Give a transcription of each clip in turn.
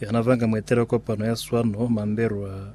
Yana banga mueteli wa kopano ya swano Mambelwa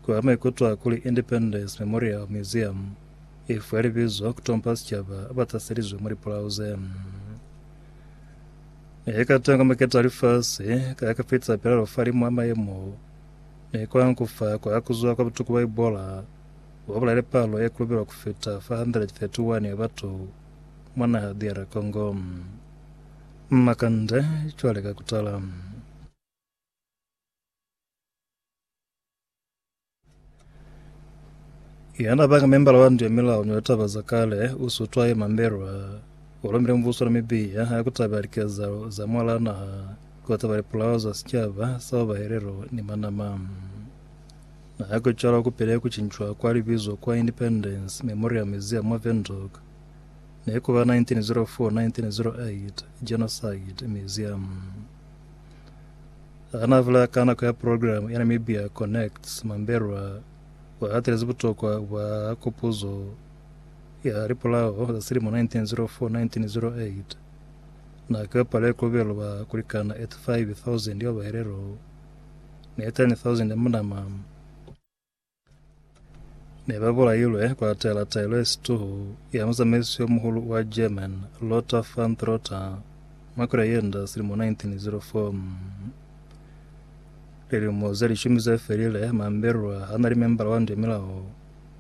kwa maikuto a kuli Independence Memorial Museum i fwe libizo ku tompa sicaba ba taselizwe mwa lipulau ze ne ka tangwa maketa a lifasi ka ka fitisa pelalo falimu a mayemo ne kwa nkufa kwa kuzwa kwa butuku bwa Ebola bo bulaile palo e kulubelwa ku fita 431 ya batu mwa naha DR Congo. Makande cwale ka kutala. Yana banga membala wa ndu ya milao ni taba za kale usutwa ye mambelwa ulomile mvuso na mibiya ya kutaba likezalo za mwala naha kutaba lipulao za sicaba sa babahelelo ni manama na ya kucala kupile kucincwa kwa libizo kwa Independence Memorial Museum wa Windhoek Nekuba 1904, 1908, Genocide, Museum. Hana bula ka nako ya programu ya Namibia Connects, Mambelwa wahatelezi butokwa bwa kopuzo ya lipulao za silimo 1904-1908 nako ya palo ya kobelo ba kulikana 85,000 ya bahelelo ne 10,000 ya munama. Ne ba bolailwe kwa taela taelo ya situhu ya muzamaisi yo muhulu wa German, Lothar von Trotha, mwa kgwedi ya Yenda selimo 1904. Lilimo ze lishumi ze felile, Mamberwa ha na li membala wa ndio milao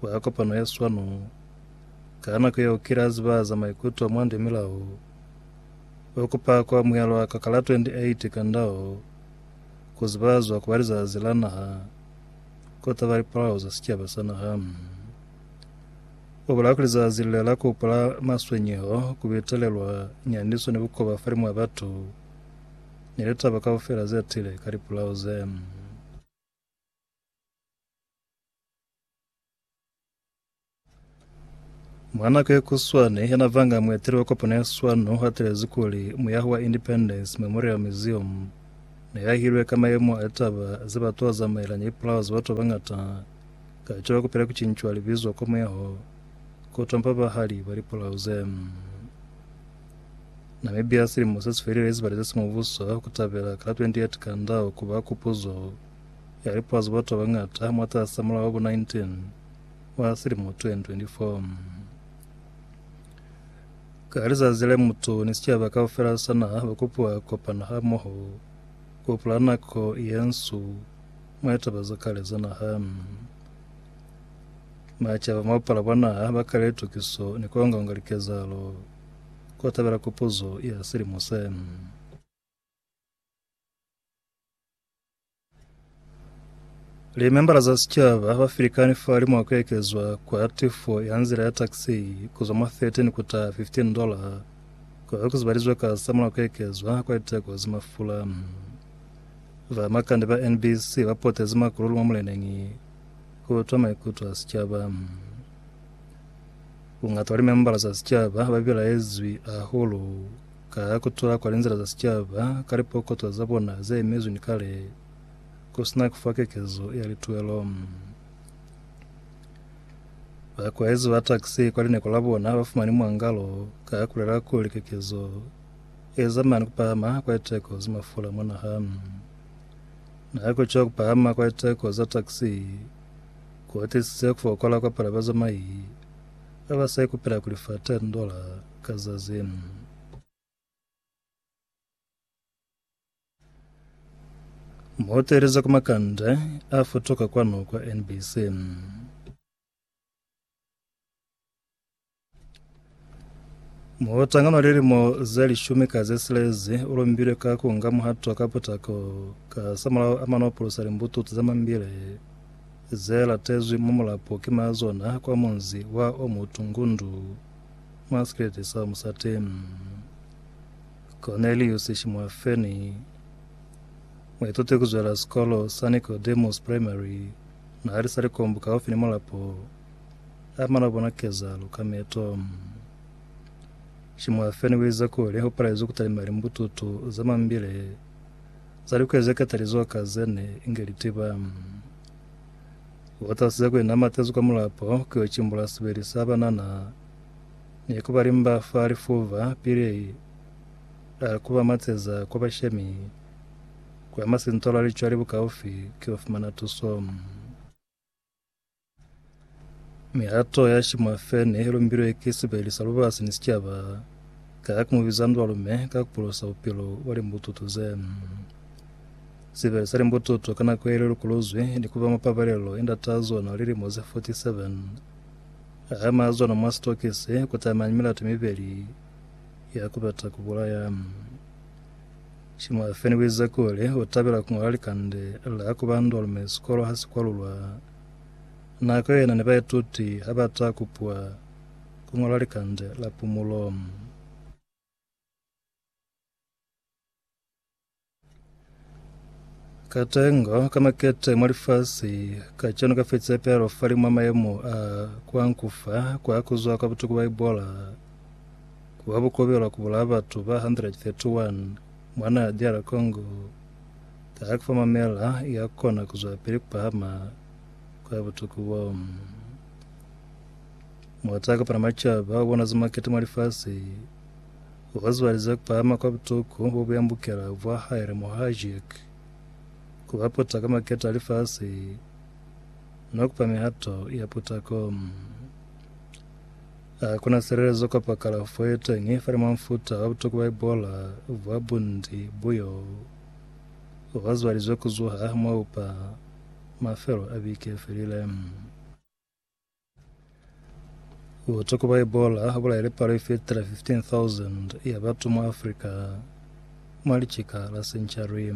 wa kopano ya swanu. Ka nako yeo kile a ziba za maikuto mwa ndio milao. O kupa ku amuhelwa ka ka la 28 Kandao, ku zibazwa ku ba Lizazi la Naha. kota ba lipolao za sicaba sa naha. O bolela kuli zazi lile la kupula maswenyeho, ku betelelwa nyandiso ni bukoba fa limwa batu ni litaba kaufela ze tile ka lipolao ze. Mwa nako ye kuswane ya navanga mueteli wa kopano ya swano o atelezi kuli muyaho wa Independence Memorial Museum ne yahilwe ka mayemo a litaba ze batu ba zamaelanya ipulao za batu ba bangata ka caba kupela kucincwa libizo kwa muyaho ku tompa bahali ba lipulao ze. Namibia silimo se si felile izibale ze si mubuso ku tabela ka la 28 Kandao ku ba kupuzo ya lipwa za batu ba bañata mwataas'a Mulao wa bo 19 wa silimo 2024. Ka lizazi le, mutu ni sicaba kaufela sa naha ba kopiwa ku kopana hamoho ku hupula nako ye nsu mwa taba za kale za naha. Macaba mwa bupala bwa naha ba kale litukiso ni ku onga-onga likezahalo ku tabela Kopuzo ya silimo se. Limembala za sicaba ba filikani fali mwa kuekezwa kwa tifo ya nzila ya taxi kuzwa mwa 13 kuta 15 dola kwa kuzibalizwe ka sa mula kuekezwa kwa liteko za mafula. Ba makande ba NBC ba potezi makululu mwa muleneñi ku utwa maikuto a sicaba. Bungata wa limembala za sicaba ba bilaezwi ahulu Ka ku tula kwa linzila za sicaba ka lipokotwa za bona ze emezwi ni kale, ku si na ku fa kekezo ya lituelo, bakwaezi ba taxi kwa lineko la bona ba fumani mwangalo ka ku lela kuli kekezo e zamana ni ku pahama kwa liteko za mafula mwa naha. Na ku ca ku pahama kwa liteko za taxi ku atisize ku fokola kwa palo ya bazamai. Ha ba sa ikupela kuli fa ten dollar ka zazi nn. Muhoteli za ku Makande a futuka kwanu kwa NBC nn. Muhotangano wa lilimo ze lishumi ka ze silezi u lumbilwe ka ku nga muhato ka putako ka samulaho a mano pulusa limbututu za mambile ze latezwi mwa mulapo ki ma zona kwa munzi wa o mu tungundu mwa sikeleti sa musati Cornelius Shimwafeni. Muituti ku zwela sikolo sa Nicodemus Primary na li sa likombo kaufi ni mulapo, a mana bona kezalo ka meto. Shimwafeni u ize kuli u palezwi ku talima limbututu za mambile. Za likuya ze katalizwa ka ze ne inge li tiba. Bo Tasi za ku ina matezi kwa mulapo ku yo cimbula sibeli sa banana ni ku ba limba fa lifuba pili a ku ba mateza kwa bashemi kwa masintola licwali bukaufi ki yo fumana tuso. Mihato ya Shimafe ne i lumbilwe ki sibeli sa lubasi ni sicaba ka ya ku mu biza ndwa lume ka ku polosa bupilo bwa limbututu ze. Sibeli sa limbututu ka nako ye li lukuluzwi ni ku ba mwa pabalelo i ndata zona lilimo ze 47. A ama zona mwa sitokisi ku tamani milato mibeli ya ku bata ku bulaya. Shimwa Feni u ize kuli u tabela ku ñola likande la ku ba ndolme sikolo ha si kwalulwa. Nako yena ni baituti ha ba ta kupiwa ku ñola likande la pumulo. Katengo ka makete mwa lifasi kacenu ka fi tsepelo fa limwa mayemo a kwa nkufa kwa ku zwa kwa butuku Baibola. Ku ba bukobelwa ku bulaya batu ba 131 mwa naha ya DR Congo, taha ya ku fa mamela i ya kona ku zwelapili ku pahama ku ya butuku bo. Muata a kopana macaba u bonazi makete mwa lifasi, u hoziwalize ku pahama kwa butuku bo bu yambukela vwa hae le Mohajek, ku ba puta ka makete a lifasi, no ku pa mihato ya putako. Ha ku na silelezo kapa kalafo ye teñi fa limwa mufuta wa butuku bwa Ebola bwa bunti bu y'o ba zwalizwe ku zuha mwa upa mafelo a biki ye felile. Butuku bwa Ebola ha bulaile palo i fitile 15,000 ya batu mwa Afrika mwa licika la senchari.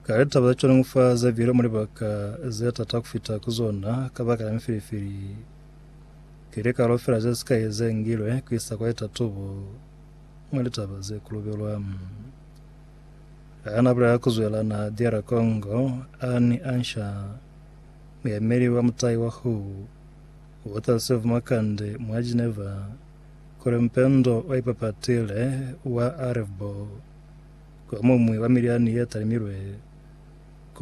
Ka litaba za cwalo fa za bile mu libaka ze tata ku fita ku zona kabakala ya mifilifili. Ki likalo fela ze sikai ze ngilwe ku isa kwa litatubo mwa litaba ze kulubelwa. Ha na bulela ku zwela na DR Congo, Anne Ansha, muyemeli wa mutai wa who, Water Save Makande mwa Geneva, Kuli mpendo wa ipapatile wa Arevbo kuli omuñwi wa milyani ye talimilwe ku